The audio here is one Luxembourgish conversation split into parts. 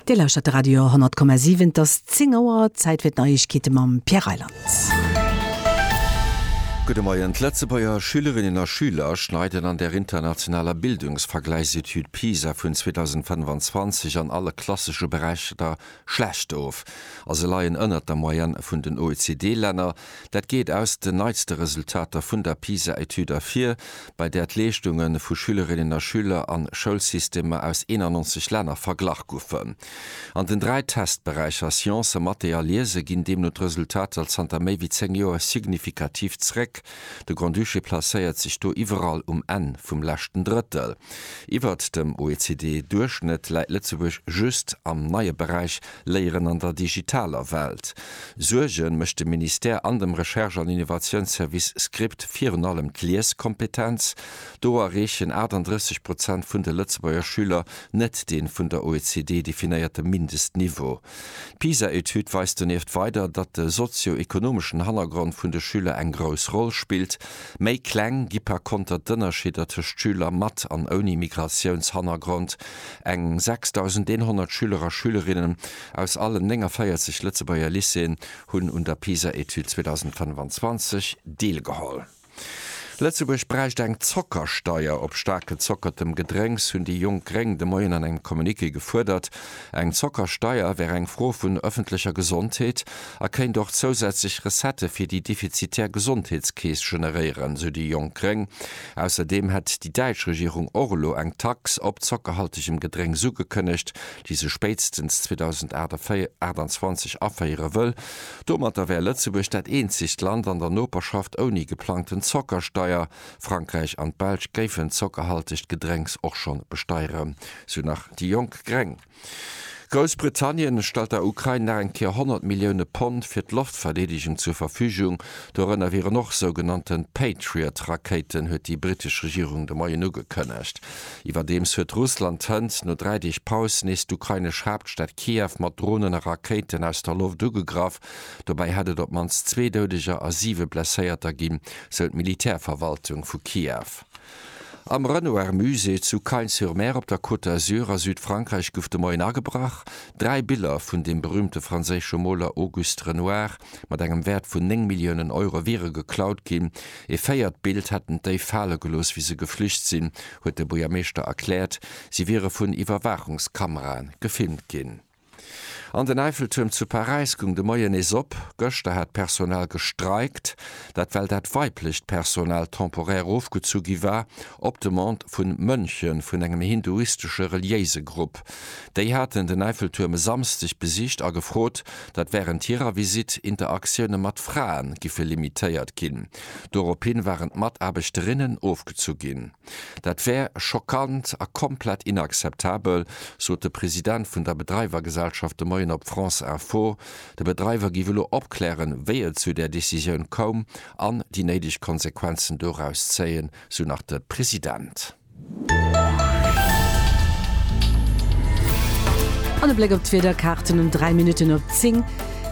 Dir lauschtert de Radio 100,7. Et ass 10 Auer. Zäit fir d'Neiegkeete mam Pierre Reyland. Gudde Moien. D'Lëtzebuerger Schülerinnen a Schüler schneiden an der internationaler Bildungsvergläichsetüd PISA vun 2025 an alle klassesche Beräichter Schlecht of, a se leien ënnert der Moyenne vun den OECD-Länner. Dat geet aus den neitste Resultater vun der PISA-Etüd ervir, bei där d'Leeschtunge vu Schülerinnen a Schüler a Schoulsystemer aus 91 Länner verglach goufen. An den dräi Testberäicher Sciencen, Mathé a Liese ginn deemno d'Resultater zanter méi wéi zéng Joer signifikativ zréck. De Grand-Duché placéiert sech do iwwerall um Enn vum leschten Drëttel. Iwwert dem OECD-Duerchschnëtt läit Lëtzebuerg just am neie Beräich Léieren an der digitaler Welt. Suerge mécht dem Ministère an dem Recherche an Innovatiounsservice Script virun allem d'Lieskompetenz. Do erreechen 38 Prozent vun de Lëtzebuerger Schüler net dee vun der OECD definéierte Mindestniveau. D'PISA-Etüd weist donieft weider, datt de sozio-ekonomeschen Hannergrond vun de Schüler eng grouss Roll spillt. Méi kleng gi par konter d'Ënnerscheeder tëscht Schüler mat an ouni Migratiounshannergrond. Eng 6.100 Schüler a Schülerinnen aus allen 49 Lëtzebuerger Lycéeën hunn un der PISA-Etüd 2025 deelgeholl. Lëtzebuerg bräicht eng Zockersteier op staark gezockertem Gedrénks, hunn déi jonk Gréng de Moien an engem Communiqué gefuerdert. Eng Zockersteier wär eng Fro vun ëffentlecher Gesondheet a kéint och zousätzlech Recettë fir déi defizitär Gesondheetskeess generéieren, sou déi jonk Gréng. Ausserdeem hätt déi däitsch Regierung och elo eng Tax op zockerhaltegem Gedrénks ugekënnegt, déi se spéitstens 2028 aféiere wëll. Domatter wär Lëtzebuerg dat eenzegt Land an der Noperschaft ouni geplangten Zockersteier. Frankräich an d'Belsch géifen zockerhaltegt Gedrénks och schonn besteieren, sou nach déi jonk Gréng. Groussbritannien stellt der Ukrain nach eng Kéier 100 Millioune Pond fir d'Loftverdeedegung zur Verfügung. Dorënner wieren och sougenannten Patriot-Rakéiten, huet déi britesch Regierung de Moien ugekënnegt. Iwwerdeems huet Russland hënt no dräi Deeg Paus nees d'ukrainesch Haaptstad Kiew mat Dronen a Rakéiten aus der Loft ugegraff. Dobäi hätt et op d'mannst zwee Doudeger a siwe Blesséierter ginn, sou d'Militärverwaltung vu Kiew. Am Renoir Musée zu Cagnes-sur-Mer op der Côte d'Azur a Südfrankräich gouf de Moien agebrach. Dräi Biller vun dem berüümte franséische Moler Auguste Renoir mat engem Wäert vun néng Milliounen Euro wiere geklaut ginn. E véiert Bild hätten d'Déif fale gelooss, wéi se geflücht sinn, huet de Buergermeeschter erkläert. Si wiere vun Iwwerwaachungskamerae gefilmt ginn. An den Eiffeltuerm zu Paräis goung de Moien nees op. Gëschter hat d'Personal gestreikt. Dat well dat weiblecht Personal temporaire ofgezu gi war, op Demande vu Mönche vun engem hinduistesche reliéise Grupp. Déi haten den Eiffeltuerm e Samsdeg besicht a gefrot, datt wärend hirer Visitt Interaktioune mat Frae giffe limitéiert ginn. Dorophin waren d'Mataarbechterinnen ofgezu ginn. Dat wär schockant a komplett inakzeptabel, sot de President vun der Bedreiwergesellschaft de Moien op France Info. De Bedreiwer giff elo opklären, wéi et zu där Decisioun koum an déi néideg Konsequenzen doraus zéien, sou nach de President. An e Bléck op d'Wiederkaarten um 3 Minutten op 10,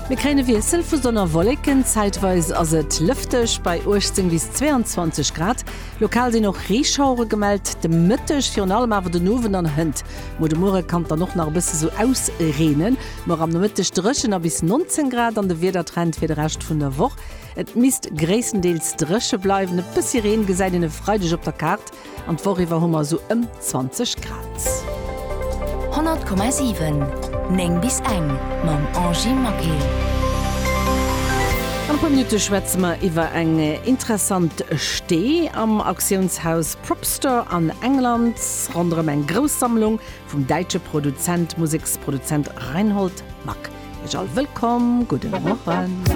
Mir kréien e Wiessel vu Sonn a Wolleken, zäitweis ass et lëfteg bei 18 bis 22 Grad. Lokal sinn och Reeschauere gemellt de Mëtteg, virun allem awer den Owend an hënt Mo de Muere kann et dann och nach e bësse sou ausreenen. Muer am Nomëtteg dréchen a bis 19 Grad an de Wiedertrend fir de Rescht vun der Woch. Et misst gréisstendeels dréche bleiwen, e bëssi Reen gesäit een e Freideg op der Kaart an d'Woch iwwer hu mer esou ëm 20 Grad. 100,7 9 bis eng mam Angy Maquet. An e puer Minutte schwätze mer iwwer eng interessant Stee am Auktiounshaus Propstore an England, ronderëm eng grouss Sammlung vum däitsche Produzent, Museksproduzent Reinhold Mack. Iech all wëllkomm, gudde Morgen.